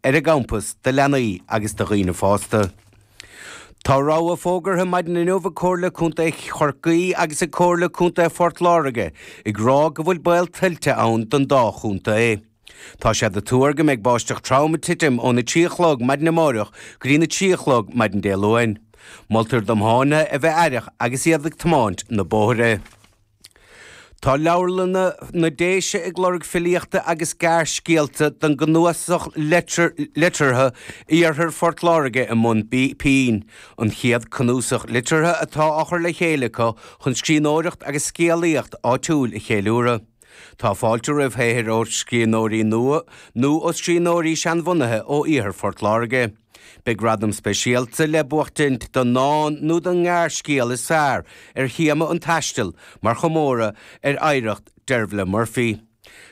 ar a gcampas do leanaí agus do dhaoine fásta. Tá rabhadh fógartha maidin inniu ag Comhairle Contae Chorcaí agus ag Comhairle Contae Phort Láirge ag rá go bhfuil baol tuillte ann don dá chontae. Tá sé á thuar go mbeidh báisteach throm ag titim ó na trí a chlog maidin amáireach go dtí na trí a chlog maidin Dé Luain. Moltar do thiománaithe a bheith aireach agus iad ag tiomáint na bóithre. Tá Leabharlanna na Déise ag lorg filíochta agus gearrscéalta don gcnuasach liteartha Iarthar Phort Láirge i mBun Pinn, an chéad cnuasach liteartha atá á chur le chéile acu chun scríbhneoireacht agus scéalaíocht áitiúil a cheiliúradh. Tá fáilte roimh shaothar ó scríbhneoirí nua nó ó scríbhneoirí seanbhunaithe ó Iarthar Phort Láirge. Beidh gradam speisialta le buachtaint don ndán nó don ngearrscéal is fearr ar théama an taistil mar chomóradh ar oidhreacht Dervla Murphy.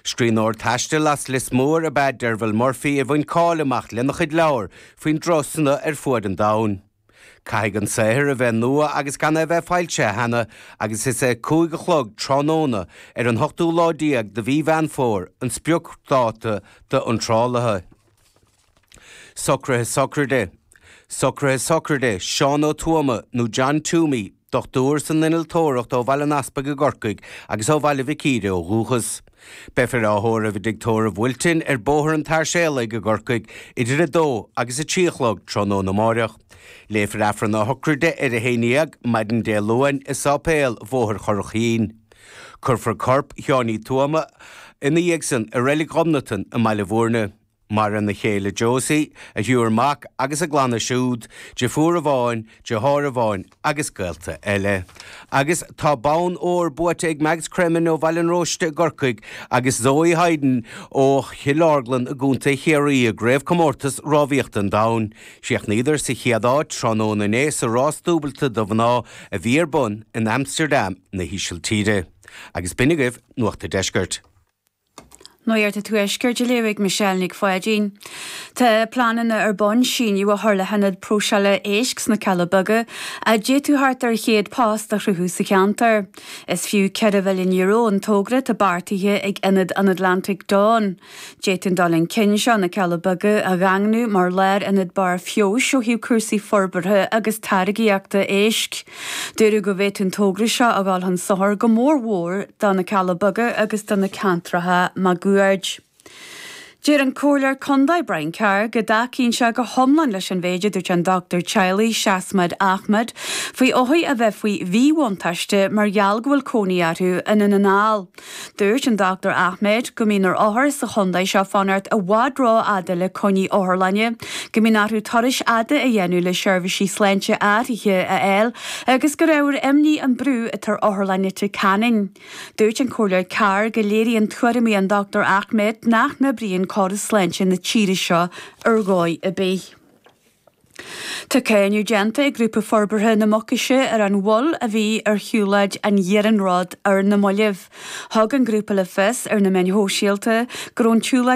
Scríbhneoir taistil as Lios Mór ab ea Dervla Murphy a bhain cáil amach lena chuid leabhar faoina turasanna ar fuaid an domhain. Caithfidh an saothar a bheith nua agus gan é a bheith foilsithe cheana agus is é cúig a chlog tráthnóna ar an ochtú lá déag de mhí Mheán Fómhair an spriocdháta d'iontrálacha. Socruithe Sochraide Socruithe Sochraide Seán Ó Tuama nó John Twomey, dochtúir san innealtóireacht ó Bhaile an Easpaig i gCorcaigh agus ó Bhaile Mhic Íre ó dhúchas. Beifear á thórramh i dTigh Tórraimh Wilton ar Bhóthar an tSairséalaigh i gCorcaigh idir a dó agus a trí a chlog tráthnóna amáireach. Léifear Aifreann na Sochraide ar a haon déag maidin Dé Luain i Sáipéal Bhóthar an Churraichín. Cuirfear corp Sheáin Uí Thuama ina dhiaidh san i Reilig Ghobnatan i mBaile Mhúirne. Maireann a chéile Josie, a thriúr mac agus a gclanna siúd, deirfiúr amháin, deartháir amháin agus gaolta eile. Agus tá bonn óir buaite ag Mags Cremen ó Bhaile an Róistigh i gCorcaigh agus Zoe Hyde ó Chill Orglan i gContae Chiarraí i gCraobhchomórtas Rámhaíochta an Domhain. Chríochnaíodar sa chéad áit tráthnóna inné sa rás dúbailte do mhná a bhí ar bun in Amsterdam na hÍsiltíre. Agus b'in agaibh Nuacht an Deiscirt. Nuacht an Tuaiscirt á léamh ag Michelle Nic Pháidín. Tá pleananna ar bun síneadh a chur le hionad próiseála éisc sna Cealla Beaga a d'fhéadfadh thart ar 100 post a chruthú sa cheantar. Is fiú €4 mhilliún an togra atá beartaithe ag Ionad an Atlantaigh Fhiáin. D'fhéadfaí an dul chun cinn seo na Cealla Beaga a dhaingniú mar lárionad barrfheabhais ó thaobh cúrsaí forbartha agus táirgeachta éisc. Dúradh go bhféadfadh an togra seo a dhul chun sochair go mór mór do na Cealla Beaga agus do na ceantracha maguaird. Deir an Comhairleoir Condae Brian Carr go dtacaíonn sé go hiomlán leis an mhéid a dúirt an Doctúir Teaghlaigh Seasmad Ahmed faoi othair a bheith faoi mhíbhuntáiste mar gheall go bhfuil cónaí orthu in i nDún na nGall. Dúirt an Dr Ahmed go mbíonn ar othair sa chontae seo fanacht i bhfad rófhada le coinní otharlainne, go mbíonn orthu turais fhada a dhéanamh le seirbhísí sláinte áirithe a fháil agus gur ábhar imní an brú atá ar Otharlann Leitir Ceanainn. Dúirt an Comhairleoir Carr go léiríonn tuairimí an Dr Ahmed nach n-oibríonn córas sláinte na tíre seo ar dhóigh ar bith. Tá cáineadh déanta ag Grúpa Forbartha na Mucaise ar an mhoill a bhí ar shiúlóid an iarnróid ar na mallaibh. Thug an grúpa le fios ar na meáin shóisialta go raibh an tsiúlóid